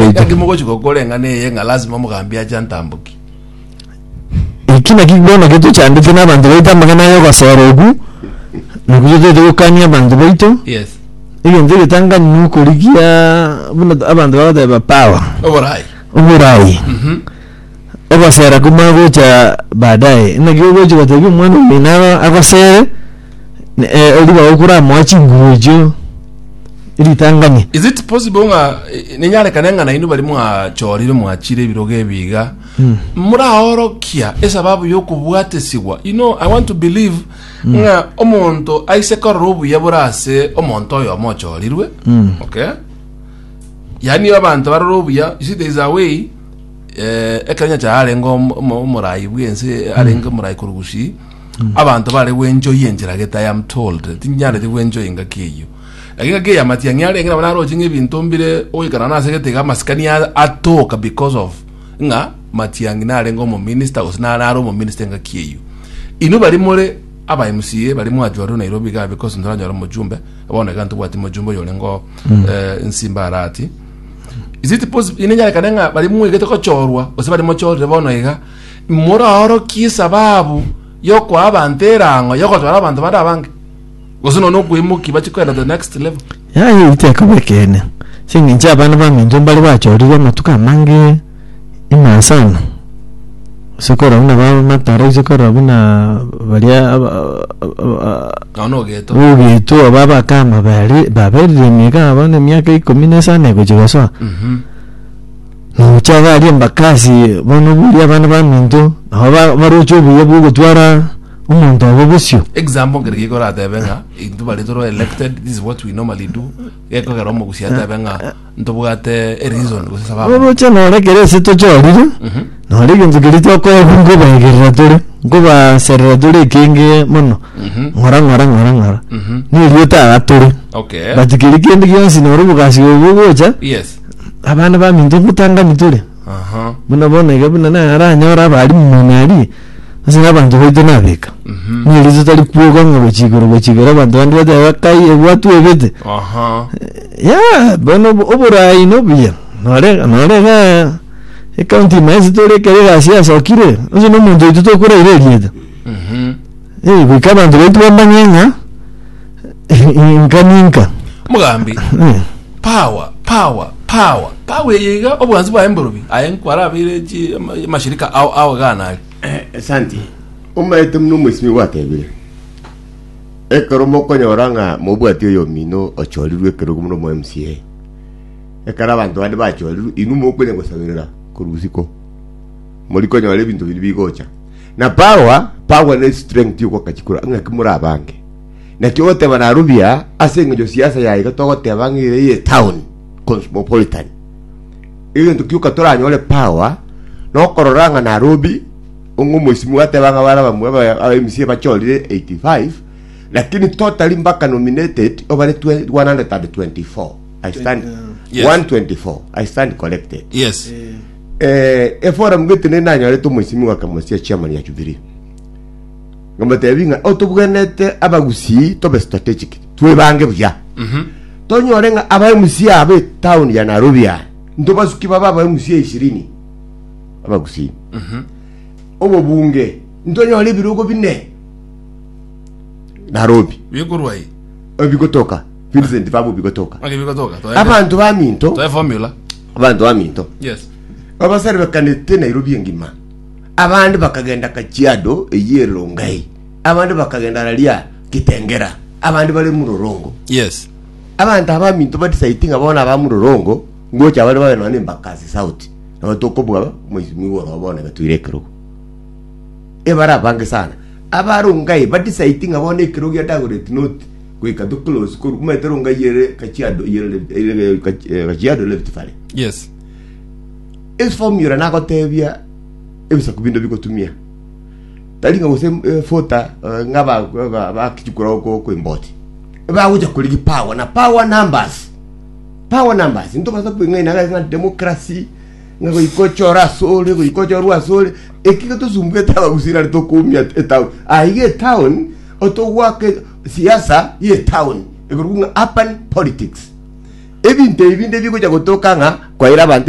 Engaki mogochi gokora eng'ana eye ng'a lasima omogambi ache antambokie. Eki naki bono getochandete na abanto baito amang'ana aya ogosera okwo, na kototete gokania abanto baito. Yes. Egento egetangani na okorigia buna t- abanto bagoteba power, Oborai. oborayi. ogosera komagocha baadaye naki ogochi gotebi omwana omino agosere eh, oriba okura amoa chinguru echio ritangani is it possible ng'a eh, ninyarekane ng'a nainwe bari mwachorire mwachire ebirogo ebiga muraorokia esababu y'okobwatesigwa you know i want to believe ng'a omonto aise korora obuya bore ase omonto oyo omochorirwe okay yaani abanto barora obuya you see there is a way eh, ekero nyacha arenge om- om- omorai bwense arenge omorai korwa gusii abanto bare gwenjoyi enchera gete i am told tinyarete gwenjoyi ngaki eyio Eki ngaki eya matiang'i arenge nabo naroche ng'ebinto mbire ogoikana nase egete amasikani a- atoka because of ng'a matiang'i narenge omominista gose nare are omominista engaki eyio inwe bari more aba mca bari mwachorire nairobi iga because ntoranyora omochumbe bono iga ntobwati mochumbe oyo orengeo eh, nsimbarati Is it possible? Ine nyarekane ng'a bari mwegete gochorwa gose bari mochorire bono iga moraorokie esababu yokoa abanto erango yogotwara abanto bande abange gose nonya okweimoki bache kwenda the next level yaye itekoba ekeene ching'encho abana bamenche mbare bachorire amatuko amange Inasana gose korora buna bamatara gose korora buna baria aba- aba- Nono ogeto. ogetu aba bakama bari baberire emiaka bono emiaka ikomi na esano egochia gosoa Mhm. nocha baria embakasi bono buya abana baminto nabo ba- baroche obuya bwa ogotwara omonto obo bosio Example ngere giko oratebe ng'a intwe bare toro elected this is what we normally do gekogera omogusi atebe ng'a Ntobwate a reason gose sababu. Oroche nore kera ase tochorire, nore egento keria tokobu nkobaegerera tore, nkobaserera tore ekenge mono, ng'ora ng'ora ng'ora ng'ora. Nerieta iga tore. Okay. But keria kende gionsi noro obogasi obo bogocha, Yes. abana baminto nkotangani tore. Aha. Buna bono iga buna naranyore abarimu muna aria, Ase nabanto baito nabeka. Mhm. Ne riso tari kwoka ng'a gochia igoro gochia igoro abanto bande bateba bakai ebwatwebete. Aha. Ya bono obo- oborayi nobuya. Nore nore ga ekaunti ime ase tore ekero egasi yasokire onsi na omonto oito tokoraire erieta. Mhm. Eh goika abanto baito bamanye ng'a Inka ninka. Omogambi, Eh. Power, power, power, power eye iga oboansi bwaye mborobi. Aye nkwarabeire chi ama- amashirika ao ao gana are. Santi, omaete muna omosimi gwatebire. Ekero mokonyora ng'a mobwati oyo omino ochorirwe ekerogo muna omo MCA. Ekero abanto bande bachorirwe, inwe mokonya gosaberera korwa bosiko. Mori konyora ebinto biria bigocha. Na power, power ne strength yogoka chikura ng'a ki morabange. Naki ogoteba naru buya ase engencho siasa ya iga togoteba ng'a ere ye town cosmopolitan. Egento kioka toranyore power nokorora ng'a Nairobi ongo moisimu gateba ng'a bara bamwe aba- aba MC bachorire 85 lakini totally mpaka nominated obare twe- 124 I stand Yes. 124 I stand corrected yes eh, eforum gete ne nanyorete omoisimi gakamosia chairman ya Jubilee Ngomotebi ng'a otobwenerete abagusii tobe strategic, twebange buya. Tonyore ng'a aba MC aba etown ya Nairobi aya, ntobasuki babe aba MC ishirini abagusii. Obobunge, ntonyore ebirogo bine Nairobi Bikorwa eye. ebigotoka, Vincent babo bigotoka. Onye bigotoka. Toende. Abanto baminto, Toe formula. abanto baminto Yes. babaserebekanete Nairobi engima. Abande bakagenda Kajiado eyio e Rongai, abande bakagenda raria Kitengera, abande bare Murorongo. Yes. Abanto aba minto ba decide ng'a bono aba Murorongo ngocha bare babe nonya Embakasi South. Nabo tokobuga mheshimiwa igoro oo bono gatoire ekerogo. Ebara abange sana. Aba Rongai ba decide ng'a bono ekerogo gia Dagoret North goika to close koru omanyete Rongai ere Kajiado ere Kajiado Rift Valley. Yes. Eformula nagoteebia ebisaku binde bigotumia, tari ng'a gose efuta eh, ng'a ba- ba- ba- bakichukura oko oko emboti. Ebagocha korigia power na power numbers. Power numbers. Ntobasa kweng'aina ng'a ng'a democracy, ng'a goika ochore ase ore, goika ochorwe ase ore. Eki getosumbuete abagusii nari tokoumia etown. Aiga etown, otogwake siasa ye etown. Ekorokwa ng'a urban politics. Ebinto ebi binde bigocha gotoka ng'a kwaira abanto